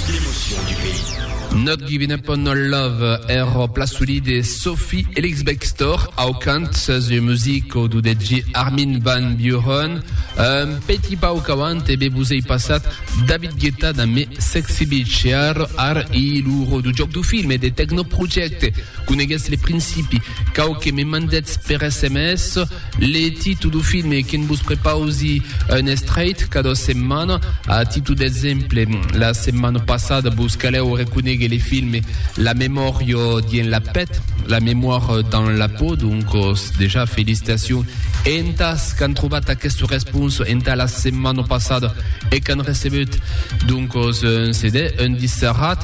L'emotion du pays. Not Givin' Up On Our Love er pla solid de Sophie Ellis-Bextor au cant sus ua music au dudet de Armin Van Buuren. Un petit pauc avant e be vos ei passat David Guetta damb Me Sexy Bitch e ar ar i lo ro du joc du film e de Techno Project. Coneguetz le principi. Quauque me mandetz per sms. Le titu du filme que'n vos prepausi un estreit cada setmana, a titu d'exemple, la setmana passada vos calèu reconéguer le filme La memòria dien la pèt, La mémoire dans la peau, doncos dejà felicitacion e entàs qu'an trobat aquesta responsa entà la setmana passada e qu'an recebeut doncos un CD, un disc serrat.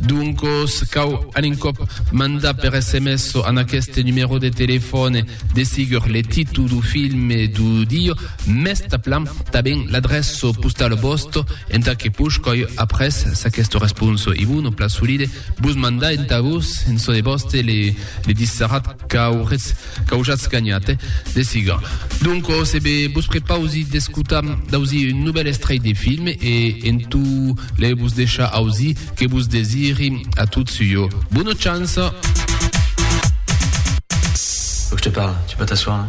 Doncos, cau an un còp mandar per sms an aqueste numèro de telefòne de sigur le titu du filme du diu, mès taplan taben l'adrèço postal vòsto enta que pushcòi après s'aquesto responso i bun o plat solide bus mandar enta vos en çò de vòste le disserat qu'auretz Qu'aujatz ganhat, eh? De siga. Donc, ò se be, vos prepausi d'escotar d'ausir un novèl estrelh de film e en tu le vos deishar ausir que vos desiri a tots ua bona chance. Faut que je te parle, tu peux t'asseoir là?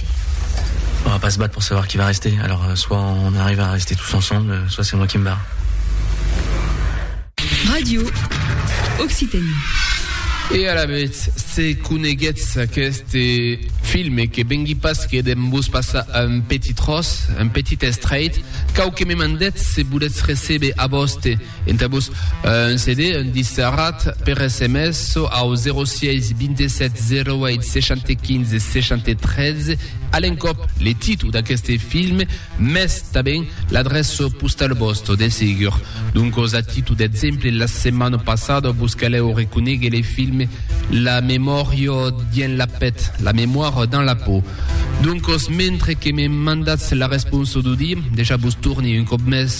On va pas se battre pour savoir qui va rester, alors soit on arrive à rester tous ensemble, soit c'est moi qui me barre. Radio Occitanie. E alavetz, se coneguetz aquest filme que vengui pas que dem vos passar un petit tros, un petit estrait, cau que me mandetz se voletz recebe a vòste Entà-vos un CD, un disc serrat, per sms çò au 06 27 08 75 73, a l'encòp le títol d'aqueste film, mès tanben l'adreça postala vòsta, de segur. Doncas, a títol d'exemple, la setmana passada vos calèu reconéguer le film La memòria dins la pèt, La mémoire dans la peau. Doncas, mentre que me mandatz la responsa d'Audí, dejà vos torni un còp mès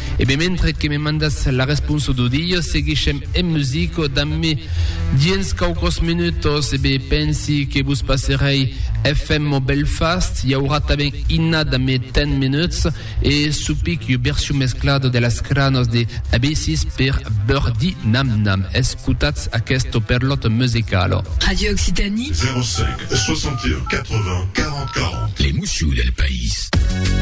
E ben mentre que me mandas la responsa do dia seguishem en musica damb mi dins quauquòs minutos e ben pensi que vos passerei FM Belfast i aurà tanben Inna damb mi 10 minuts e Supic ua version mesclada de las cranas de Abysses per Birdie Nam Nam escotatz aquesta perlòta musicala. Radio Occitanie. 05 61 80 40 40. Les mousseaux del país.